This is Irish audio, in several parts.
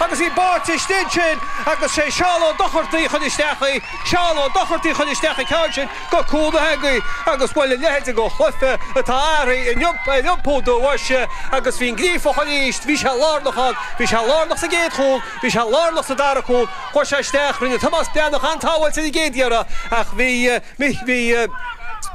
Agus í báite istigh ansin agus sé Seán Ó Dochartaigh a chuir isteach í, Seán Ó Dochartaigh a chuir isteach an ceann sin go cúl na heangaí agus bhuel a leithide de chluiche atá athraithe in iompú do bhoise agus bhí an Gríofach aríst, bhí sé lárnach ann, bhí sé lárnach sa gcéad chúl, bhí sé lárnach sa dara cúl, chuaigh sé isteach, rinne Tomás Breathnach an-tsábháil ar an gcéad iarraidh ach bhí. Bhí, bhí,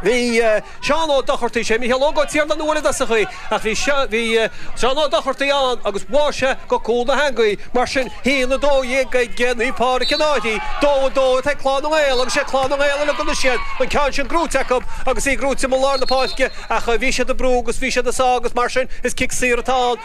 bhí Seán Ó Dochartaigh, sé Micheál Óg Ó Tiarnaigh a bhuail i dtosach í, ach bhí seo, bhí Seán Ó Dochartaigh ann agus bháigh sé go cúl na heangaí, mar sin a haon 12 ag Naomh Pádraig an Fhairche, dó 2 ag Clann na nGael agus sé Clann na nGael uilig a n-siad an ceann sin gnóite acu agus í gnóite i lár na páirce ach bhí siad ag brú agus bhí siad ag sá agus mar sin is cic saor atá ann.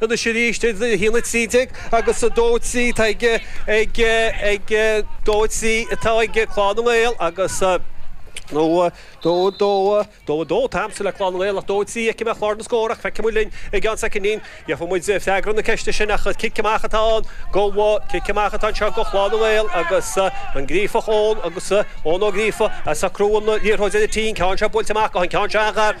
Anois arís, 1, 13 agus 2, 3, tá ag, ag, ag, 2, 3, atá ag Clann na nGael agus, nó 2, 2, 2, 2, tá amscaí le Clann na nGael ach 2, 3 a fheicim ar chlár na scór ach feicfidh muid linn i gceann soicinín, gheobhaidh muid freagra na ceiste sin ach cic amach atá ann go, cic amach atá anseo go Clann na nGael agus an Gríofach, Eoin agus Eoin Ó Gríofa ag socrú an liathróid ar an tí, an ceann seo buailte amach go, an ceann seo a ghair.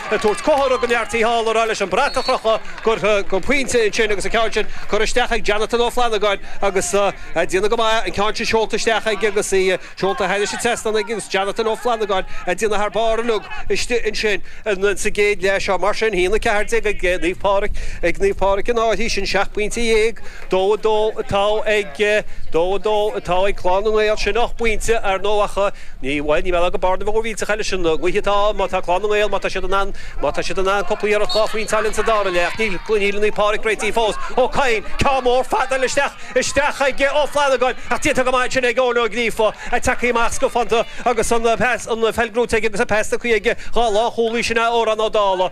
ag tabhairt comhartha don fhear taobh thall, a rá leis an brat a chrochadh, gur pointe ansin agus an ceann sin curtha isteach ag Jonathan Ó Flannagáin agus ag déanamh go maith, an ceann sin seolta isteach ag agus í seolta thairis an trasnán aige agus Jonathan Ó Flannagáin ag déanamh thar barr inniu istigh ansin sa gcéad leath seo. Mar sin, a haon 14 ag Naomh Pádraig, ag Naomh Pádraig an Fhairche, sin seacht bpointe dhéag, Dó a dó atá ag, dó a dó atá ag Clann na nGael. Sin ocht bpointe, ar ndóigh, ach ní, bhuel, ní móide gur bearna mhór mhillteach í leis an ngaoth atá, má tá Clann na nGael, má tá siad in ann, má tá siad in ann cúpla iarracht dhá phointe a fháil ins an dara leath, ach níl, níl Naomh Pádraig réitithe fós. Ó Cadhain, ceann mór fada isteach, isteach ag Ó Flannagáin, ach déanta go maith ansin ag Eoin Ó Gríofa, tagtha amach scafánta agus an pas, an pheil gnóite aige agus an pas ina shuí aige, dhá lánchúlaí, sin é Odhrán Ó Dála.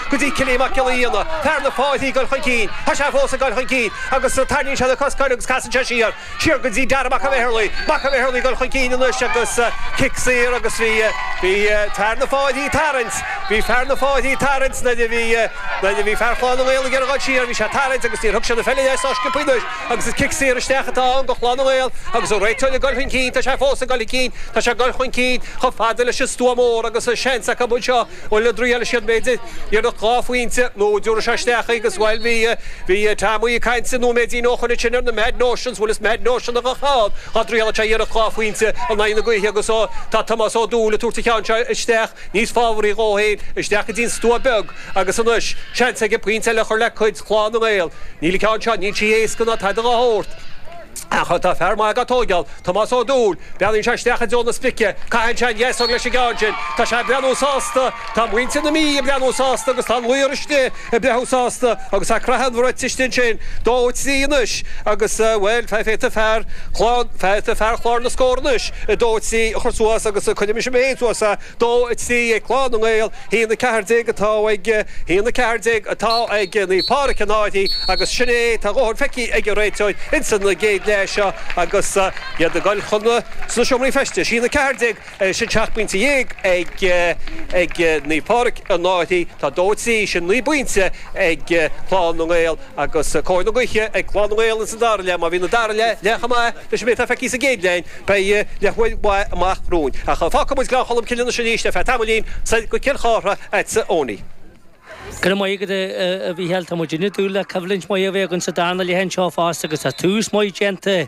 go dtí Cilín Mac Giolla Fhíona, fear na Fairche ag dul chun cinn, tá sé fós ag dul chun cinn agus tarraingíonn sé na coscáin air agus casann sé siar, siar go dtí Darragh Mac an Mheizrligh, Mac an Mheizrligh ag dul chun cinn anois agus cic saor agus bhí, bhí fear na fáilthí ag tarraingt, bhí fear na Fairche ag tarraingt nuair a bhí, nuair a bhí fear Chlann na nGael ag iarraidh dhul siar, bhí sé ag tarraingt agus níor thug sé na pheiliní as á sciobadh anois agus is cic saor isteach atá ann do Chlann na nGael agus an réiteoir ag dul chun cinn, tá sé fós ag dul chun cinn, tá sé ag dul chun cinn chomh fada leis an stua mór agus seans acu anseo. Bhuel, an dtriailfidh sé b'fhéidir, iarracht dhá phointe nó an dtiúrfaidh sé isteach í agus, bhuel, bhí, bhí Teaimí ag caint nóiméidín ó shoin ansin ar na mad notions, bhuel is mad notion a bheadh ann dhá dtrialfadh sé iarracht dhá phointe in aghaidh na gaoithe agus ó, tá Tomás Ó Dúill ag tabhairt an ceann seo isteach níos fabhraí dhó fhéin, isteach go dtí an stua beag agus anois, seans aige pointe eile a chur le cuid Chlann na nGael. Níl an ceann seo, níl sí éasca ná tada dhá shórt. Agus tá fear maith ag a tóigeáil, Tomás Ó Dúill, breathnaíonn sé isteach i dtreo na sprice, caitheann sé an-easca leis an gceann sin, tá sé ag breathnú sásta, tá muintir na Mí ag breathnú sásta agus tá an laoch istigh ag breathnú sásta agus tá craitheadh an bhrait istigh ansin, dó trí anois agus, bhuel, feictear fear Chlann, feictear fear chlár na scór anois, dó trí a chur suas agus cuirfidh mise mé fhéin suas é, dó trí ag Clann na nGael, Haon 14 atá ag, haon 14 atá ag Naomh Pádraig Fhánada agus sin é tá a dhóthain feicthe ag an réiteoir ins an gcéad leath seo agus iad ag goil chun na sna seomraí feistis. Haon 14, sin seacht bpointe dhéag ag ag Naomh Pádraig Fhánada. Tá dó trí, sin naoi bpointe ag Clann na nGael agus cóir na gaoithe ag Clann na nGael ins an dara leath. Má bhíonn an dara leath leath chomh maith leis an méid atá feicthe sa gcéad leath, Beidh leathuair mhaith amach romhainn, ach fágfaidh muid Gleann Cholm Cille anois arís ar feadh tamaillín, soir go Cill Chartha, agatsa a Chonaill. Go raibh maith agat, a Mhícheáil. Tá muid uilig ag dúil le coimhlint mhaith a bheith againn sa darna leath anseo fosta, agus tá tús maith déanta